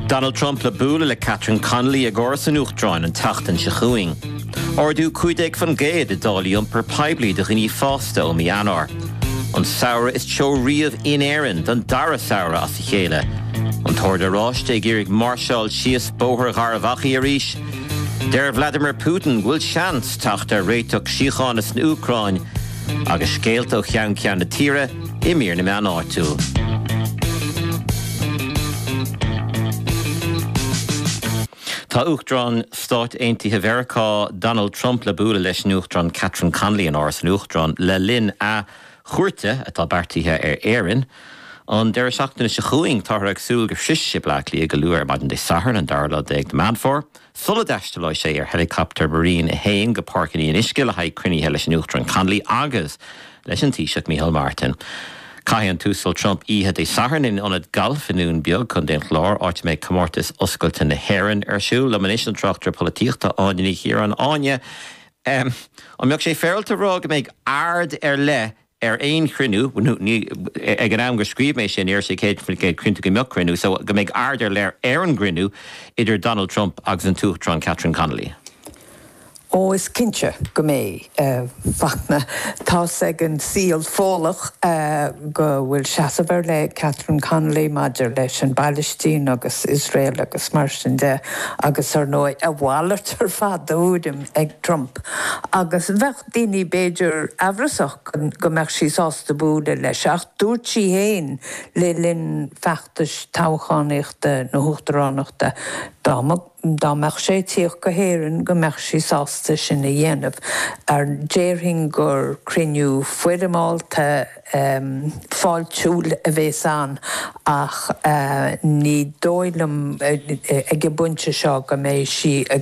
Donald Trump le bualadh le Catherine Connolly ag Áras an Uachtaráin an tseachtain seo chugainn. Ardú 15% i dtáillí iompar poiblí do dhaoine fásta ó mí Eanáir. An samhradh is teo riamh in Éirinn don dara samhradh as a chéile. An tOrd Oráiste ag iarraidh máirseáil síos Bóthar Gharbh Achaidh arís. Deir Vladimir Putin go bhfuil seans teacht ar réiteach síochána san Úcráin. Agus scéalta ó cheann ceann na tíre, i mír na meán áitiúil. Tá Uachtarán Stáit Aontaithe Mheiriceá Donald Trump le bualadh leis an Uachtarán Catherine Connolly in Áras an Uachtaráin le linn a chuairte atá beartaithe ar Éirinn an deireadh seachtaine seo chugainn. Táthar ag súil go sroichfidh sé Bleá Cliath go luath ar maidin Dé Sathairn, an dara lá déag de Mheán Fómhair. sula dtaistealóidh sé ar helicopter Marine a hAon go Páirc an Fhionnuisce le haghaidh cruinnithe leis an Uachtarán Connolly agus leis an Taoiseach Micheál Martin. Caithfidh an tUasal Trump oíche Dé Sathairn in ionad gailf i nDún Beag, Contae an Chláir, áit a mbeidh Comórtas Oscailte na hÉireann ar siúl. Liom anois an tráchtaire polaitíochta, Áine Ní Chiaráin. Áine, An mbeadh sé féaráilte a rá go mbeidh aird ar leith ar aon chruinniú, ní, ag an am gur scríobh mé sin, ní raibh sé 100% cinnte go mbeadh cruinniú, so, go mbeidh aird ar leith ar an gcruinniú idir Donald Trump agus an tUachtarán Catherine Connolly. Ó, is cinnte go mbeidh, a Fhachtna. Tá's ag an saol Fódhlach go bhfuil seasamh ar leith ag Catherine Connolly maidir leis an bPailistín agus Iosrael agus mar sin de agus, ar ndóigh, a mhalairt ar fad de thuairim ag Trump agus bheadh, daoine b'fhéidir amhrasach go mbeadh sí sásta bualadh leis, ach dúirt sí féin le linn feachtais toghchánaíochta na huachtaránachta dá mbeadh sé ag tíocht go hÉirinn go mbeadh sí sásta sin a dhéanamh, Déarfainn gur cruinniú foirmeálta fáiltiúil a bheas ann ach ní dóigh liom ag an bpointe seo go mbeidh sí ag